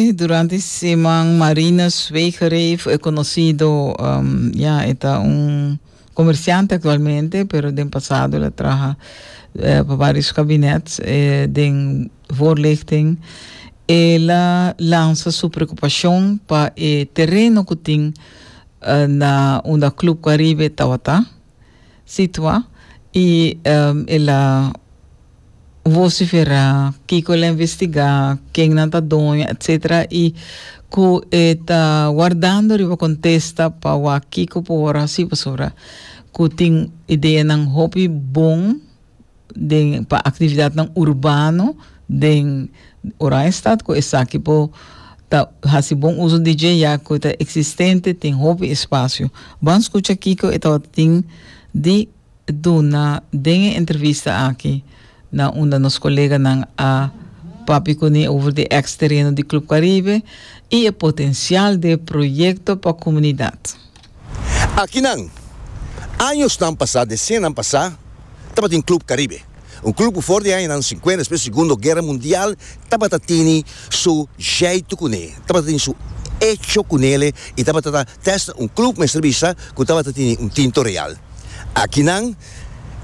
Durante e siman Marinus Wegereef, e conocido, ya, e ta un comerciante actualmente, pero den pasado el a traha pa varios cabinets den voorlichting, el a lansa su preocupacion pa e tereno cu tin na unda Club Caribe tabata. situa y el a vocifera kico el a investiga, kennan ta doño, etc. Y cu e ta guardando riba contesta pa wak kico por haci pasobra cu tin ideanan hopi bon. den pa actividadnan urbano den Oranjestad cu esaki por ta haci bon uzo di dje ya cu e ta existente tin hopi espacio. Ban scucha kico e tabata tin di duna den e entrevista aki na unda nos coleganan a papia cuni over di ex tereno di Club Caribe y e potencial d'e proyecto pa comunidad. Akinan, añosnan pasá, desianan pasá, tabatin Club Caribe, un club ku for di añanan sinkuenta, despues di Segundo Guera Mundial, tabata tini su jèitu kuné, tabata tini su echo ku nele i tabata ta tèsta un club mester bisa ku tabata tini un tinto real. Akinan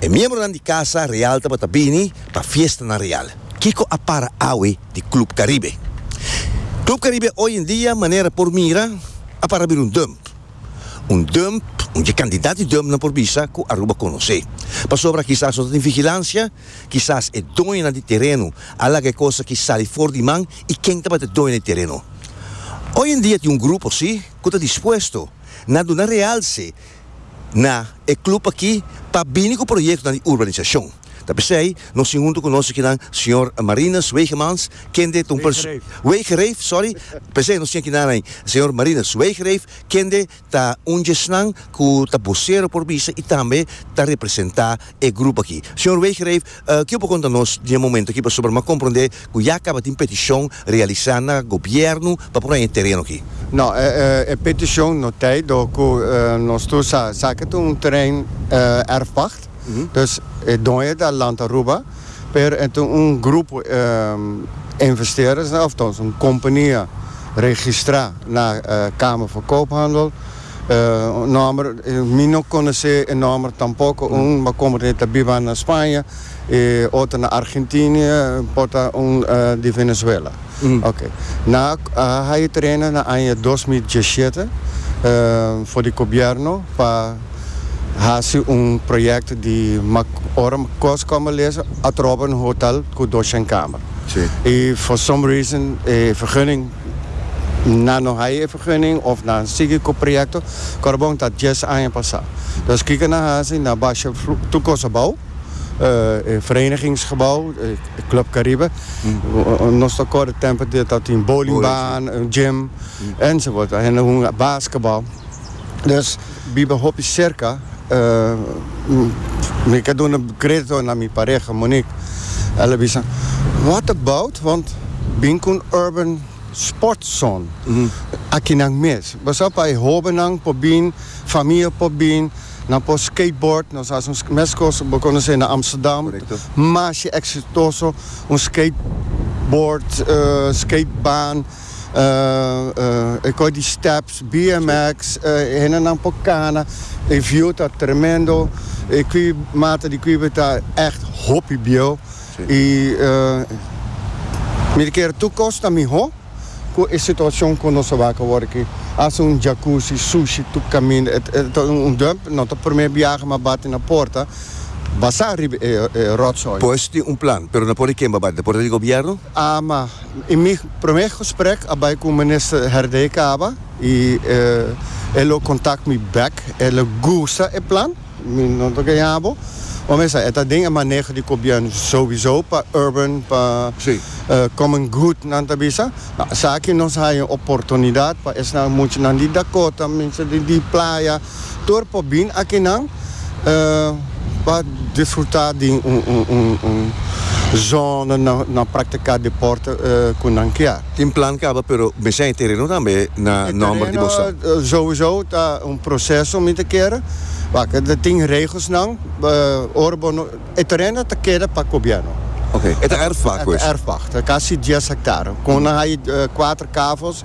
E miembronan di Casa Real tabata bini pa fiestanan real. Kiko a para awe di Club Caribe? Club Caribe oy en dia, manera por mira, a para bira un dump. Un dump un dje kandidat di dumpnan por bisa ku Aruba konosé. Pasobra kisas no ta tin vigilansia, kisas e doñonan di tereno a laga e kosa ki sali for di man i ken tabata e doño di tereno? Oy en dia tin un grupo si ku ta dispuesto na duna realse na e club aki pa bini cu proyectonan di urbanisacion. Ta p'esey nos tin hunto cu nos akinan Señor Marinus Wegemans, kende ta un perso-, Wegereef, sorry, p'esey nos tin aki nanay Señor Marinus Wegereef, kende ta un djesnan cu ta bocero por bisa y tambe ta representa. e grupo aki. Señor Weegreeff, ke u por konta nos di e momento aki pasobra m'a komprondé ku ya kaba tin petishon realisá na gobièrnu pa por haña e tereno aki? No, e petishon no ta ei dor ku nos tur sa sa ke ta un terrein erfpacht. Dus e doño ta lanta Aruba, pero e ta un grupo investeerders, òf tòg un kompania registrá na Kamer van Koophandel. Un nòmber, mi no konosé e nòmber tampoko, un ba komo ta ta biba na Spaña, e otro na Argentini, por ta un di Venezuela. Oke, nan a haya tereno na aña dos mil diesshete for di gobièrnu pa hasi un proyèkto di ora kos kòm a lesa atroba un hotel ku dos shenkamer i for some reason e vergunning Nan no haya e vergunning of nan sigui cu proyecto Corbon ta dies aña pasa. Dus kico nan haci na basha tur cos abao, e verenigingsgebouw, e Club Caribe, nos ta cor e tempo di ta tin bowlingbaan, gym, enzovoort. Ahende hoen basketbal. Dus. Biba hopi serka, mi ta duna kredito na mi pareha Monique. El a bisa, What about wont bin ku un urban sports zone aki nan mes. Bo sa pa e hobennan por bin, famia por bin, nan por skateboard, nos hasi un meskos bo konosé na Amsterdam, masha eksitoso, un skateboard, skatebaan. e kos di steps, bmx, e hendenan por kana, e view ta tremendo, e kui mata di kuibe ta echt hopi bieu y mi ta kere tur kos ta miho cu e situacion cu nos tabata awor aki, hasi un jacuzzi, sushi tur caminda, e ta un dump, no ta prome biaha mi a bati na porta, basa riba e rotsoi. Pues tin un plan, pero no por a kemba bati na porta di gobierno? Ama. In mi promé gesprek a bai ku Minister Herdey Caba i e lo kontak mi bèk. E lo gusta e plan. Mi no ta gañá bo. Bo mester e ta den e maneho di gobièrnu souwisou pa urban, pa common good nan ta bisa. Esaki nos haña un oportunidat pa esnan muchanan di Dakota, mester di Playa. Tur por bin akinan pa disfruta di un zona na praktika deporte ku nan kia. Tin plan kaba pero mester hay tereno tambe na nomber di boso. Sowiso ta un proseso mi ta kere wak ta tin regelsnan ora bo no e tereno ta keda pa gobièrnu. Oke e ta erfpacht pues. Erfpacht ta kasi dies hektare kon nan hay kuater kavos.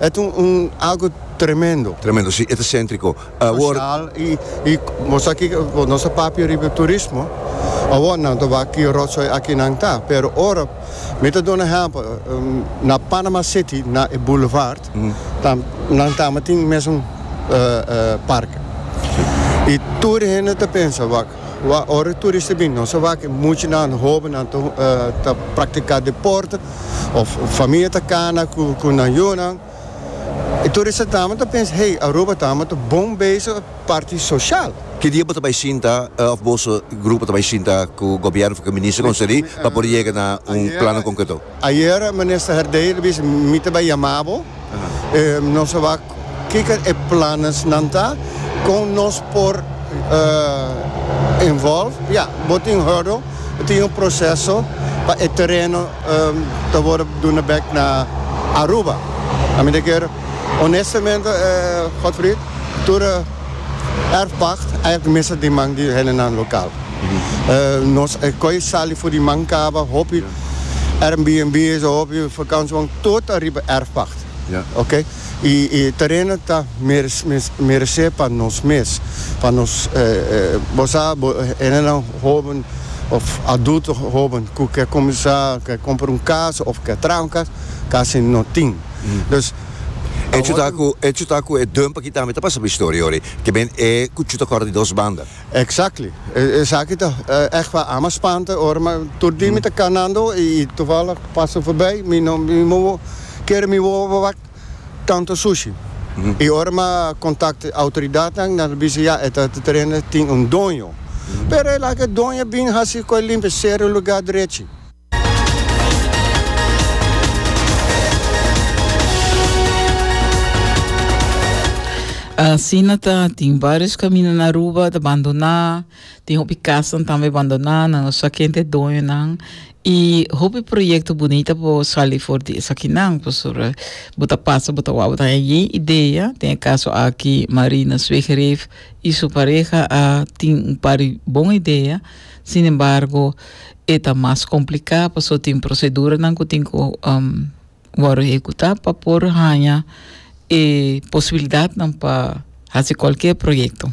E ta un algo tremendo. Tremendo, si, e ta sentriko. Awor. Sosial i, i bo sa kiko, bo nos a papia riba turismo, awor nan ta wak ki rotsoi aki nan ta, pero ora, mi ta duna ehèmpel, na Panama City, na e boulevard, tam, nan tambe tin mesun, eh, eh, parke. I tur e hende ta pensa, wak, Wa ora e turista bini nos a wak e muchanan, hobennan ta praktiká deporte òf famia ta kana ku nan yunan. E turista tambe ta pensa, hey, Aruba ta amo ta bon bezig parti soshal. Ki dia bo ta bai sinta òf boso grupo ta bai sinta ku gobièrnu òf ku e minister konselí pa por yega na un plannan konkreto? Ayer Minister Herdeir a bisa, Mi ta bai yama bo, nos a wak kiko e plannennan ta, kon nos por involve. Ya, bo tin hurdle, bo tin un proseso pa e tereno ta worde duna bek na Aruba. A mi ta kere, honestamente Godfried, tur e erfpacht ayer'ta mester den man di hendenan local. Nos a koy sali for di man kaba hopi. Airbnb is a hopi vakantie wang tot ariba erfpacht. Ja. Ok? I e tereno ta meres, mes, merece pa nos mes. Pa nos, eh, eh, bo sa, bo, hendenan hoben of adulto hoben cu ke cuminsa, ke compra un cas of ke traha un cas, casi no tin. Dus, pa Echo ta hopi. cu, echo ta cu e dum pa kita mi ta pasa pa historia hoor. Te ben e cu chuta corda di dos banda. Exactly. Esaki ta echt pa ama spanta ora mi tur dia mi ta canando y toevallig pasa forbij mi no mi no woe kere mi woe verwacht tanto sushi y ora mi a contact autoridadnan nan ta bisa ya e ta ta terreno tin un doño pero e laga e doño a bin hasi cu e limpia cera e lugar derechi. Asina ta, tin varios camino na Aruba ta bandona, tin hopi casan tambe bandona, nan no sa ken te doñonan. Y hopi proyecto bonita por sali for di esakinan, pasobra bo ta pasa, bo ta wak, bo ta haña yen idea. Den e caso aki, Marina Zwegereef y su pareha a tin un par di bon idea. Sin embargo, e ta mas complicá paso tin proceduranan cu tin cu wòrdu ehecutá pa por haña e posibilidadnan pa haci cualkier proyecto.